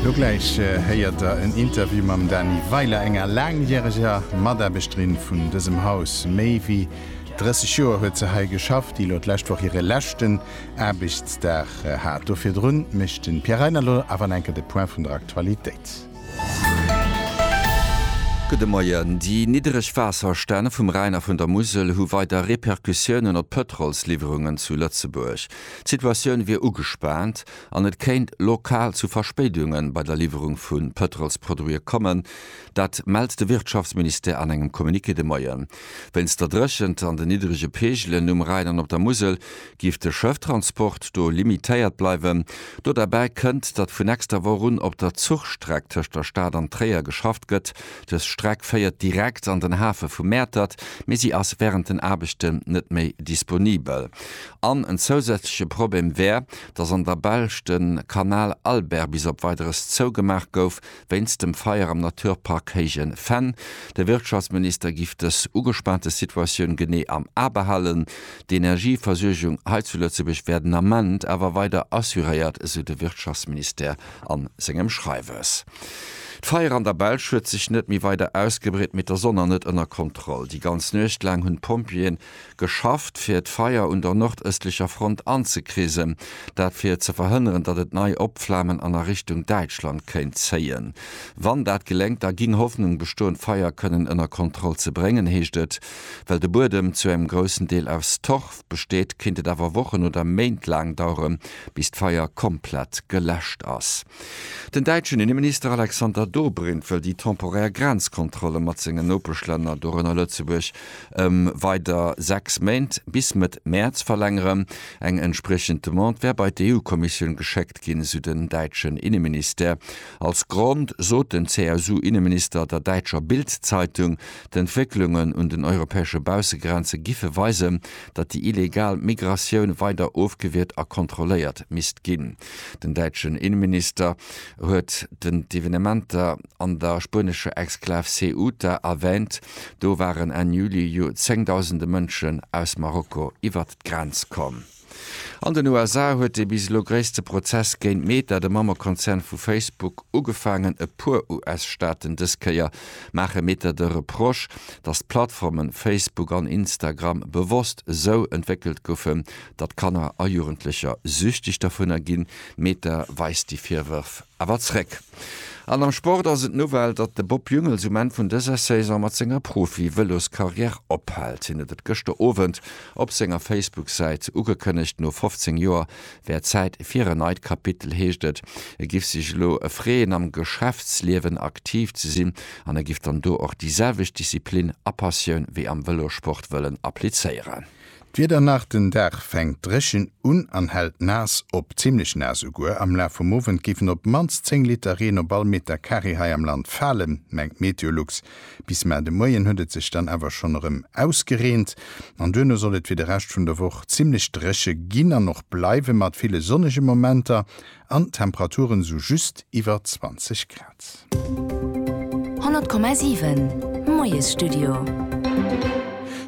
Lo gläich héiert der en Interview mam Dany Weiler, enger laangjäreger Mataarbechterin vun dësem Haus. Méi wéi 30 Joer huet se hei geschafft, déi elo d'lescht Woch hire leschten Aarbechtsdag hat. Do virdrun mécht de Pierre Reyner lo awer enker de Point vun der Aktualitéit. Gudde Moien. Déi niddereg Waasserstänn vum Rhäin a vun der Musel hu weider Repercussiounen op d'Pëtrolsliwwerungen zu Lëtzebuerg. D'Situatioun wier ugespaant an et kéint lokal zu Verspéidunge bei der Liwwerung vu Pëtrolsproduite kommen. Dat mellt de Wirtschaftsministère an engem Communiqué de Moien. Wéinst der Dréchent an den niddrege Peegelen um Rhäin an op der Musel géif de Schëfftransport do limitéiert bleiwen. Do derbäi kënnt, datt vu nächster Woch un op der Zuchstreck tëscht der Stad an Tréier geschafft gëtt. Dës Streck féiert direkt an den Hafe vu Mäertert, mee si ass wärend den Aarbechten net méi disponibel. An en zousätzleche Problem wär, dass an der Belsch de Canal Albert bis op Weideres zougemaach gouf, wéinst dem Feier am Naturpark Héije Venn. De Wirtschaftsminister giff dës ugespaante Situatioun genee am A behalen. D'Energieversuergung hei zu Lëtzebuerg wär den Ament awer weider assuréiert, esou de Wirtschaftsministère a sengem Schreiwes. D'Feier an der Belsch huet sech net méi weider ausgebreet, mee d'Sonn an net ënner Kontroll. Déi ganz Nuecht laang hunn d'Pompjeeën geschafft, fir d'Feier un der nordëstlecher Front anzekrisen. Dat fir ze verhënneren, datt et nei opflamen an a Richtung Däitschland kéint zéien. Wann dat geléngt, da ginn Hoffnung bestoen, d'Feier kënnen ënner Kontroll ze bréngen, heescht et. Well de Buedem zu engem groussen Deel aus Torf besteet, kéint et awer Wochen oder Méint laang daueren, bis d'Feier komplett geläscht ass. Den däitschen Inneminister Alexander Dobrindt wëll déi temporär Grenzkontrolle mat senge Nopeschlänner, dorënner Lëtzebuerg, ëm weider 6 Méint, bis Mëtt Mäerz, verlängeren. Eng entspriechend Demande wär bei d'EU-Kommissioun geschéckt ginn, sou den däitschen Inneministère. Als Grond sot den CSU-Inneminister der däitscher Bild-Zeitung, d'Entwécklungen un den europäesche Baussegrenze giffe weisen, datt déi illegal Migratioun weider ofgewiert a kontrolléiert misst ginn. Den däitschen Inneminister huet den d'Evenementer an der spuenescher Exklav Ceuta erwäänt. Do waren Enn Juli jo zéngdausende Mënschen aus Marokko iwwert d'Grenz komm. An den USA huet dee bis elo gréisste Prozess géint Meta, de Mammekonzern vu Facebook, ugefaangen. E puer US-Staaten, dës Kéier maache Meta de Reproche, datt d'Plattformen Facebook an Instagram bewosst esou entwéckelt goufen, datt Kanner a Jugendlecher süchteg dervunner ginn. Meta weist déi Virwërf awer zréck. An am Sport ass et d'Nouvelle, datt de Bob Jungels um Enn vun dëser Saison mat senger Profi-Vëloscarrière ophält. Hien huet et gëschter Owend op senger Facebook-Säit ugekënnegt. No 15 Joer wär Zäit fir en neit Kapitel, heescht et. E giff sech elo freeën, am Geschäftsliewen aktiv ze sinn an e giff dann do och déi selwecht Disziplin a Passioun wéi am Vëlossport wëllen applizéieren. D'Wieder nach, Den Dag fänkt dréchen un an hält naass op, zimmlech naass esouguer. Am Laf vum Owend géifen op d'mannst 10 Liter Reen op all Meter Carré hei am Land falen, mengt Meteolux. Bis mar de Moien huet et sech dann awer schonn erëm ausgereent an duerno soll et fir de Rescht vun der Woch zimmlech dréche ginn an och bleiwen, mat ville sonnege Momenter. An d'Temperaturen sou just iwwer 20 Grad. 100,7 Moiesstudio.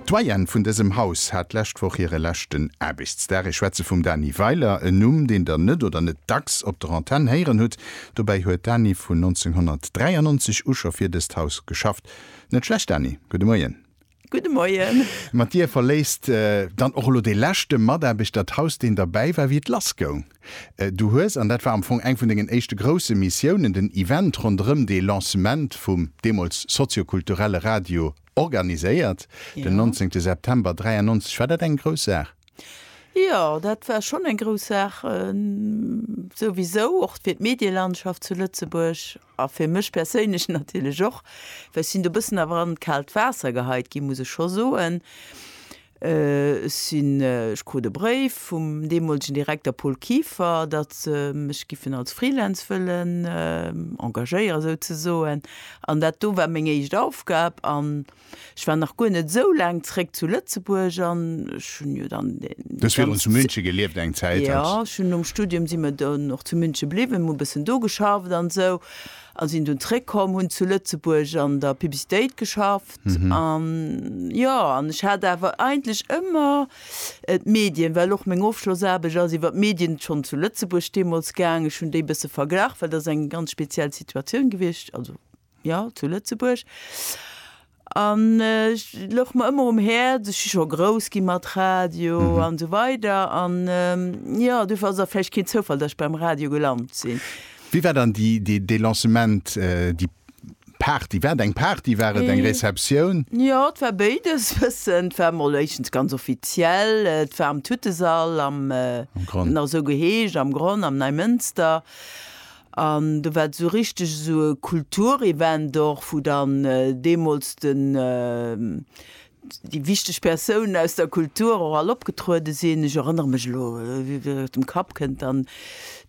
D'Doyenne vun dësem Haus hat d'lescht Woch hire leschten Aarbechtsdag. Ech schwätze vum Dany Weiler, en Numm, deen Der net oder net dacks op der Antenn héieren hutt. Dobäi huet d'Dany vun 1993 u scho fir dëst Haus geschafft. Net schlecht, Dany. Gudde Moien. Gudde Moien. Mat dir verléisst dann och elo dee leschte Mataarbechter d'Haus, deen derbäi war, wéi et lass goung. Du hues, an dat war am Fong eng vun dengen éischte grousse Missiounen, den Event ronderëm dee Lancement vum deemools soziokulturelle Radio organiséiert, den 19 September 1993. War dat eng grouss Saach? Jo, dat war schonn eng grouss Saach. Souwisou och fir d'Medielandschaft zu Lëtzebuerg. A fir mech perséinlech natierlech och, well ech sinn do e bëssen awer an d'kaalt Waasser geheit ginn, muss ech scho soen. Ech sinn, ech krut e Bréif vum deemolegen Direkter Paul Kieffer, datt se mech giffen als Freelance wëllen engagéieren, esou ze soen. An dat do war meng éischt Aufgab. An Ech war nach guer net esou laang zréck zu Lëtzebuerg an ech hunn jo dann déi. Du hues virdrun zu München gelieft eng Zäit. Jo, ech hunn nom Studium si mer dann och zu München bliwwen, hu e bëssen do geschafft an esou a sinn dunn zréckkomm, hunn zu Lëtzebuerg an der Publicitéit geschafft an jo. An ech hat awer eigentlech ëmmer d'Medien, well och meng Ofschlossaarbecht ass iwwer d'Medien schonn zu Lëtzebuerg deemools gaang. Ech hunn déi e bësse verglach, well dat ass eng ganz speziell Situatioun gewiescht, also. jo, zu Lëtzebuerg. An et louch mer ëmmer um Häerz, ech si scho grouss gi mat Radio an esou weider. An jo, dofir ass et och vläicht keen Zoufall, datt ech beim Radio gelant sinn. Wéi war dann déi, dee, dee Lancement, déi Party? War et eng Party, war et eng Receptioun? Jo, et war béides e bëssen. Et war emol éischtens ganz offiziell, et war am Tuttesall, am, Am Gronn. et huet nach esou geheescht, am Gronn, am Neimënster. An do war et esou richteg esou e Kulturevent och, wou dann deemools den, déi wichteg Persounen aus der Kultur och all opgetruede sinn. Ech erënnere mech elo, aus dem Kapp kënnt dann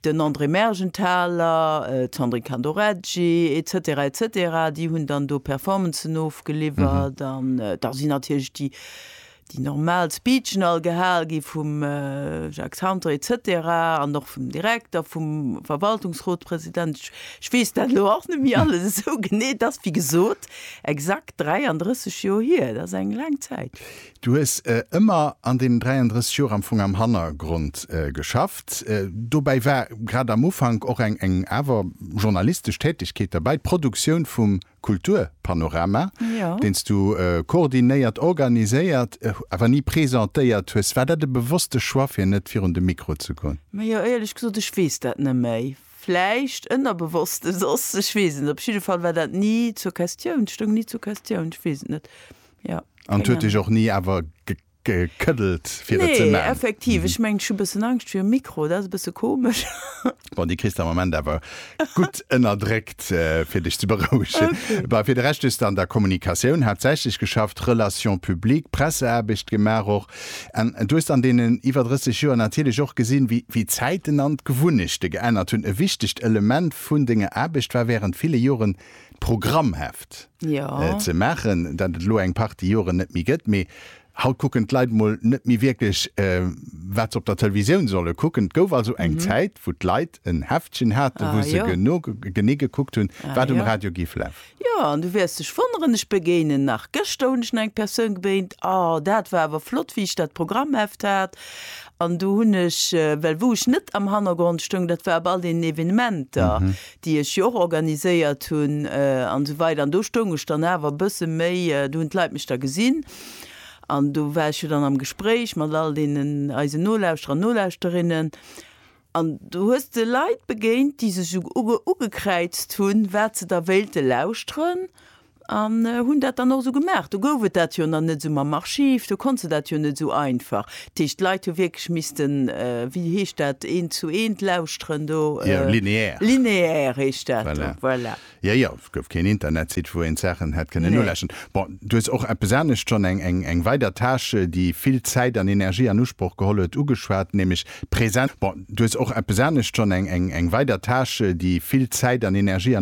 den André Mergenthaler, d'Sandrine Candoreggi et cetera et cetera, déi hunn dann do Performancen ofgeliwwert. An da sinn natierlech déi Déi normal Speechen all gehal gi vum Jacques Santer et cetera an och vum Direkter, vum Verwaltungsrotpresident, ech, ech weess dat elo och net méi alles esou genee, et ass wéi gesot exakt 33 Joer hier, dat ass eng laang Zäit. Du hues ëmmer an deenen 33 Joer am Fong am Hannergrond geschafft. Dobäi war grad am Ufank och eng, eng awer journalistesch Tätigkeet derbäi, d'Produktioun vum Kulturpanorama, deen s du koordinéiert, organiséiert, awer ni presentéiert hues. War dat e bewosste Choix, fir net virun de Mikro ze goen? Ma jo, éierlech gesot, ech weess dat net méi. Vläicht ënnerbewosst e soss, ech weess et net. Op jidde Fall war dat ni zur Questioun, stoung ni zur Questioun, ech weess et net. Jo, keng Ahnung. An et huet dech och ni awer ge. gekeddelt fir et ze man. Effektiv, ech mengt ech hu bëssen Angscht virum Mikro, dat ass e bësse komesch. Bon déi kriss de am Ament awer gutt ënnerdréckt fir dech ze berouegen. Bah fir de Rescht hues de an der Kommunikatioun haaptsächlech geschafft, Relations publiques, Presseaarbecht gemaach och an du hues an deenen iwwer 30 Joer natierlech och gesinn wéi wéi d'Zäiten an d'Gewunnechte geännert hunn. E wichtegt Element vun denger Aarbecht war während ville Joren d'Programmheft ze maachen, dat et elo eng Partie Joren net méi gëtt. Mee haut kucken d'Leit emol net méi wierklech, wat se op der Televisioun solle kucken. Et gouf also eng Zäit, wou d'Leit en Heftchen haten, wou se genee gekuckt hunn, wat um Radio géif lafen. Jo, an du wäers dech wonneren, ech begéinen nach, gëschter hunn ech nach eng Persoun gebéint, A dat war awer flott, wéi ech dat Programmheft hat. An do hunn ech, well wou ech net am Hannergrond stoung, dat war op all deenen Evenementer. déi ech jo och organiséiert hunn an esou weider an do stoung ech dann awer e bësse méi, do hunn d'Leit mech da gesinn an do war ech jo dann am Gespréich mat all deenen eisen Nolauschterer an Nolauschterinnen an do hues de Leit begéint, déi sech esou ugekräizt hunn, wat se da wéilte lauschteren An hunn dat dann och esou gemaach. Do gouf et dat jo nach net esou mam Archiv, do konnt se dat jo net esou einfach. Dat heescht, d'Leit hu wierklech missten, wéi heescht dat, eent zu eent lauschteren do. Jo, lineaire. Lineaire heescht dat do, voilà. Jo, jo, et gouf keen Internetsite, wou een d'Saachen hätt kënnen nolauschteren. Bon, du hues och eppes anescht schonn, eng weider Tâche, déi vill Zäit an Energie an Usproch geholl huet, ugeschwat, nämlech d'Präsenz. Bon, du hues och eppes anescht schonn, eng weider Tâche, déi vill Zäit an Energie an.